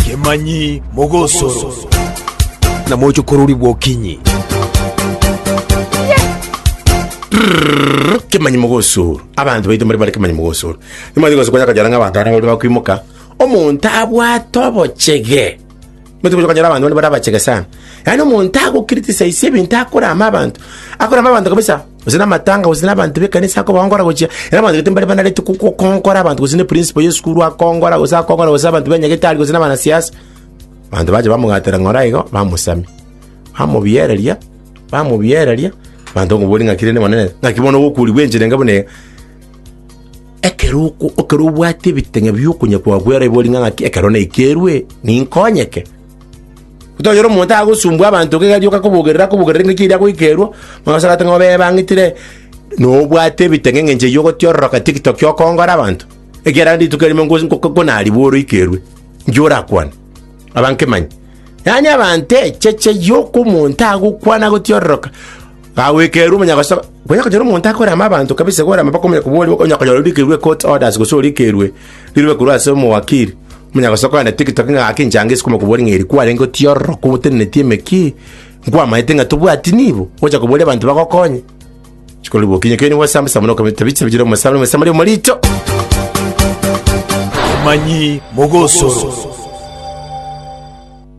Kemanyi mogosoro. Namoche kororigwa okinyi. Rrrr, kemanyi mogosoro abanto baito mbare bare kemanyi mogosoro nimwati gose konya kanyora ng'a abanto arabare bakwimoka omonto abwate obochege nimwati gose kanyora abanto bande bare abachege sana yaani omonto agokritisize ebinto akorama abanto akorama abanto kabisa gose namatanga gose nabanto b'ekanisa akobongora gochia era abanto gete mbare banarete gokongora abanto gose ne principal y'esukuru akongora gose akongora gose abanto b'enyagetari gose nabanasiasa abanto bacha bamogatera ng'ora igo bamosamia bamobiereria bamobiereria abanto bakomoboria ng'aki rende monene ng'aki bono ogokori bw'enchera enga buna eye ekeroko ekero obwate ebiteng'e biokonya kwagwera oboria ng'a ng'aki ekero naikierwe ninkonyeke Gotonyora omonto agosumbwa abanto iga gioka kobogerera kobogerera engaki eria agoikerwa, muna gose agoteba ng'a obe ebang'itire na obwate ebiteng'e engencho eyio ogotiororoka tiktok okongora abanto, ekiagera rende rituko erimo nko- nko- nkonarigwe ore oikerwe, inki orakwane? Abanke manye. Yaani abanto echeche yoka omonto agokwana agotiororoka. Gagwekerwa omonyagosaba, konya konyora omonto akorama abanto kabisa igoro amaboko omuya kobua oria onya konyora orikerwe ecourt orders gose orikerwe rirobe korwa ase omowakiri. Omonyagosa okoenda tiktok ng'a gaki enchanga ase koma koboria ng'a eri kwarenge otiororoka ogoteneneti emeki, nkwamaete ng'a tobwati nibo, gocha koboria abanto bagokonye. Chikororibo okinye keri nigo osamba samba nokamenya tabisa biri omosaba na omosamba ri omorito. Abamanyi mogosoro.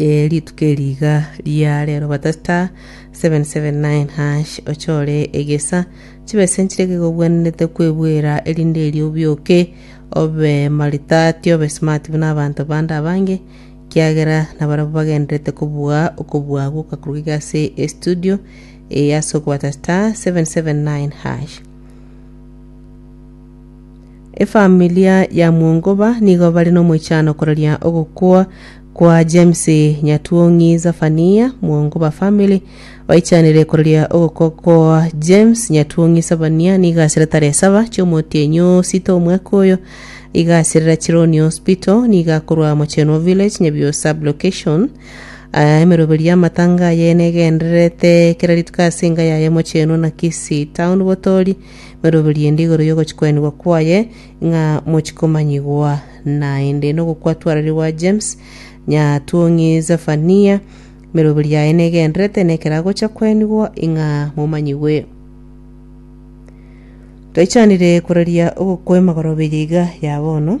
rituko eri iga ria rero batasta 779 ' ochore egesa chibe senchire ekero obwenerete kwebwera erinde erio obioke obe maritati obe smart buna abanto bande abange kiagera nabarabwo bagendererete kobua okobua gwoka korwa iga ase estudio eye ase okobatasta 779 #. Efamiri ya Mwongoba nigo bare nomoichano kororia ogokwa kwa James Nyatuong'i Zafania Mwongoba family baichanire kororia ogokwa kwa James Nyatuong'i Zafania nigo asire tarehe saba chi'omotienyi o sita omwaka oyo iga asirera Chironi Hospital nigo akorwa Mochenwa Village Nyabio Sub Location Ah, emeroberio y'amatanga aye negendererete kera rituko ase enka yaye Mochenwa na Kisii Town Botori Mweroberie ende igoro y'ogochikwanigwa kwaye, ng'a mochikomanyigwa naende. Nogokwa twararigwa James, nyatwong'i Zefania, emeroberi yaye negendererete, na ekero agocha kwenigwa, ng'a momanyigwe. Toichanire koraria ogokwa emagoroba eye iga ya bono.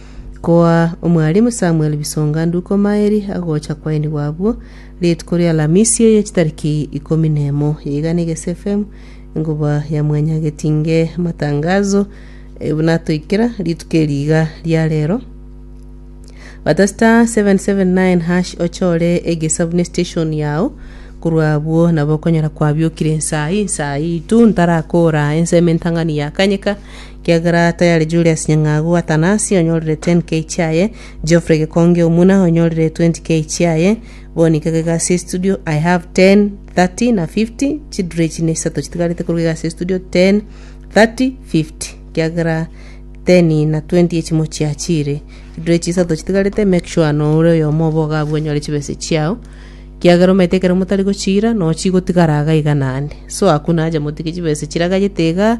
Koa omwalimu Samuel Bisonga Ndukomaeri agocha kwaenigwa abwo rituko ri'Alamisi eye chitariki ikomi nemo. Iga negese FM engoba ya mwanya getinge amatangazo eh, buna toikera rituko eri iga ria rero. Bata star 779 hash ochore egesa buna station yao korwa abwo nabo okonyora kwabiokire nsai nsai tu ntarakora ensemo entang'ani yakanyeka Ekiagera tayari Julius Nyang'agu Atanasi onyorire 10K chiaye, Geoffrey Gekonge Omuna onyorire 20K chiaye, Boni Kega Egasi Estudio I have 10, 30 na 50 chidure echi neisato chitigarete korwa Egasi Estudio 10, 30, 50 ekiagera 10 na 20 echi mochiachiire chidure echi isato chitigarete make sure nore oyomo obe iga abwo onyore chibesa echiao ekiagera omanyete ekero motari gochiira nochigotigara iga iga naende so aku nacha motige chibesa chiragachete iga